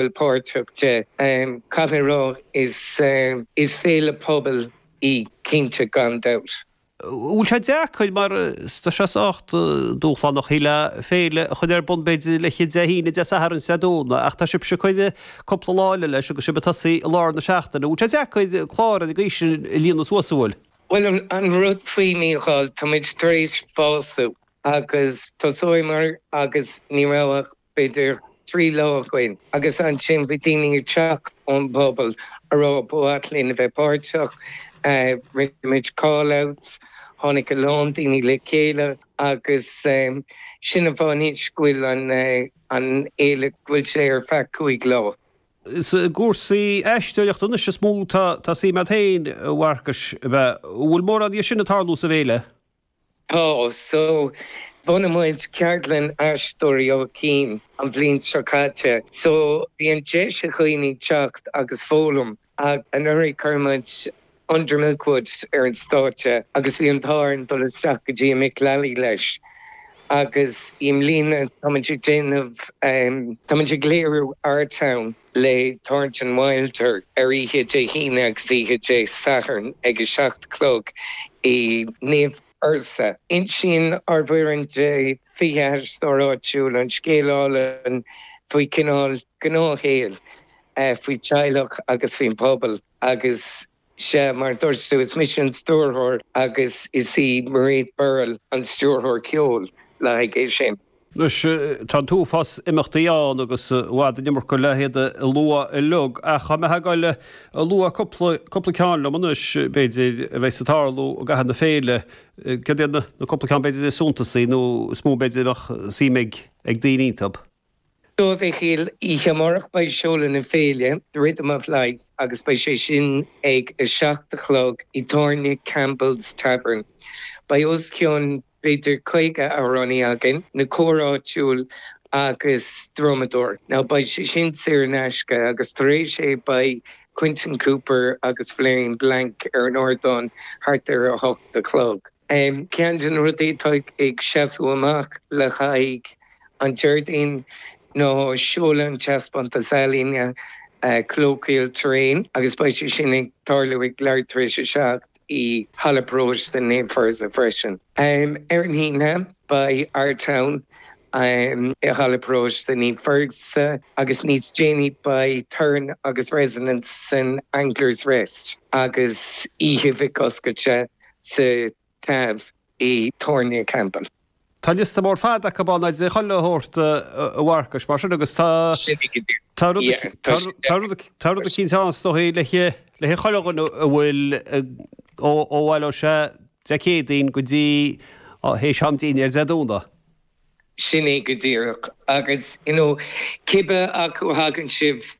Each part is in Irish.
bhfuil páirteach de. Caithfidh mé rá is féile pobail í cinnte gan dabht. Bhfuil sé deacair mar tá sé sách dúshlánach í le féile a chur ar bun b'fhéidir le chéile Dé hAoine, Dé Sathairn is an Domhnach ach tá sibhse ag cur cúpla lá eile leis agus sibh ag tosaí i lár na seachtaine. Bhfuil sé deacair clár ar an gcaoi sin a líonadh suas, an bhfuil? Bhuel an rud faoi, a Mhíchíl, táimid tar éis fás agus thosaíomar agus ní raibh ach b'fhéidir trí lá againn, agus ansin bhí daoine ag teacht ón bpobal ag rá ba mhaith linn a bheith páirteach. Rinne muid call outs, tháinig a lán daoine le chéile agus sin an fáth anois go bhfuil an fhéile, go bhfuil sé ar feadh cúig lá. Is i gcúrsaí aisteoireachta anois is mó atá suim a'd féin, a Mharcais, b'fhéidir. An bhfuil mórán dhe sin ag tarlú sa bhféile? Tá so. Bhunaigh muid ceardlann Aisteoirí Áth Cinn an bhliain seo caite so bíonn deis ag daoine teacht agus foghlaim. Anuraidh chuir muid Under Milk Wood ar an stáitse agus bhí an t-ádh orainn dul isteach go dtí an Mick Lally leis agus i mbliana tá muid ag déanamh, tá muid ag léiriú Our Town. le Thornton Wilder ar oíche Dé hAoine agus oíche Dé Sathairn ag 7 a chlog i Naomh Fursa. Insíonn ár bhfoireann de 20 aisteoir áitiúil an scéal álainn faoi cineál gnáthshaoil, faoi teaghlach agus faoin bpobal agus. Sea, mar a dúirt tú, is mise an stiúrthóir agus is í Mairéad Farrell an stiúrthóir ceoil le haghaidh é sin. Anois, tá an t-uafás imeachtaí ann agus i bhfad an iomarca le hiad a lua uilig, ach tá mé ag dul ag fágáil fút a lua cúpla, cúpla ceann liom anois, b'fhéidir, a bheas ag tarlú i gcaitheamh na féile. Céard iad na, na cúpla ceann b'fhéidir is suntasaí, nó is mó b'fhéidir a bheadh suim ag, ag daoine iontu? Bhuel oíche amárach beidh seoladh na féile 'The Rhythm of Life' agus beidh sé sin ag a seacht a chlog i dtábhairne Campbell's Tavern. Beidh os cionn b'fhéidir 50 amhránaí againn, na cóir áitiúil agus drumadóir. Now beidh sé sin saor in aisce agus tar éis, beidh Quentin Cooper agus Floriane Blancke ar an ardán thart ar a hocht a chlog. Ceann de na rudaí atá ag seasamh amach le haghaidh an Déardaoin ná seoladh an taispeántas ealaíne Colloquial Terrain agus beidh sé sin ag tarlú ag leath tar éis a seacht i Halla Paróiste Naomh Fursa freisin. Ar an Aoine, beidh Our Town i Halla Paróiste Naomh Fursa agus níos déanaí beidh Turn agus Resonance san Anglers Rest agus oíche Mhic Oscailte sa Taibh i Tábhairne Campbell. Tá liosta mór fada acu ann, agus iad chuile a thabhairt a Mharcais, mar sin, agus tá rud eicínt ann is dóigh le haghaidh chuile dhuine a bhfuil ó Bhaile Ó Sé Dé Céadaoin go dtí théis am dinnéir Dé Domhnaigh. Sin é go díreach, agus cibé acu a thagann sibh.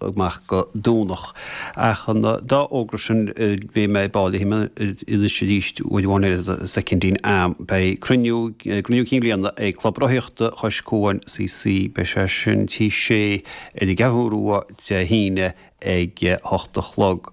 amach go Domhnach. Ach an dá fhógra sin, bhí mé ag báidh le anois arís uair amháin ar an soicindín am. Beidh cruinniú, cruinniú cinn bliana ag Club Rothaíochta Chois Cuain, CC, beidh sé sin Tigh Sé ar an gCeathrú Rua Dé hAoine ag a hocht a chlog.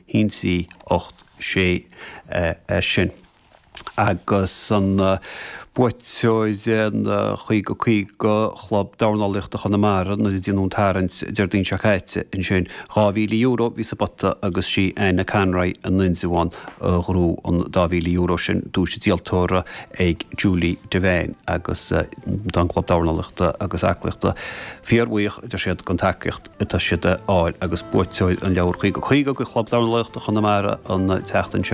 hionsaí 8 6 sin agus buaiteoir an 50-50 Chlub Dornálaíochta Chonamara nuair a déanadh an tarraingt Déardaoin seo caite. Ansin, €2,000 bhí sa bpota agus sí Anne Conroy in Indreabhán a ghnóthaigh an dá mhíle euro sin, duais an díoltóra ag Julie Devane agus tá an Club Dornálaíochta agus Aclaíochta fíor-bhuíoch a deir siad den tacaíocht. atá siad a fháil agus buaiteoir an leabhair 50-50 do Chlub Dornálaíochta Chonamara an tseachtain seo.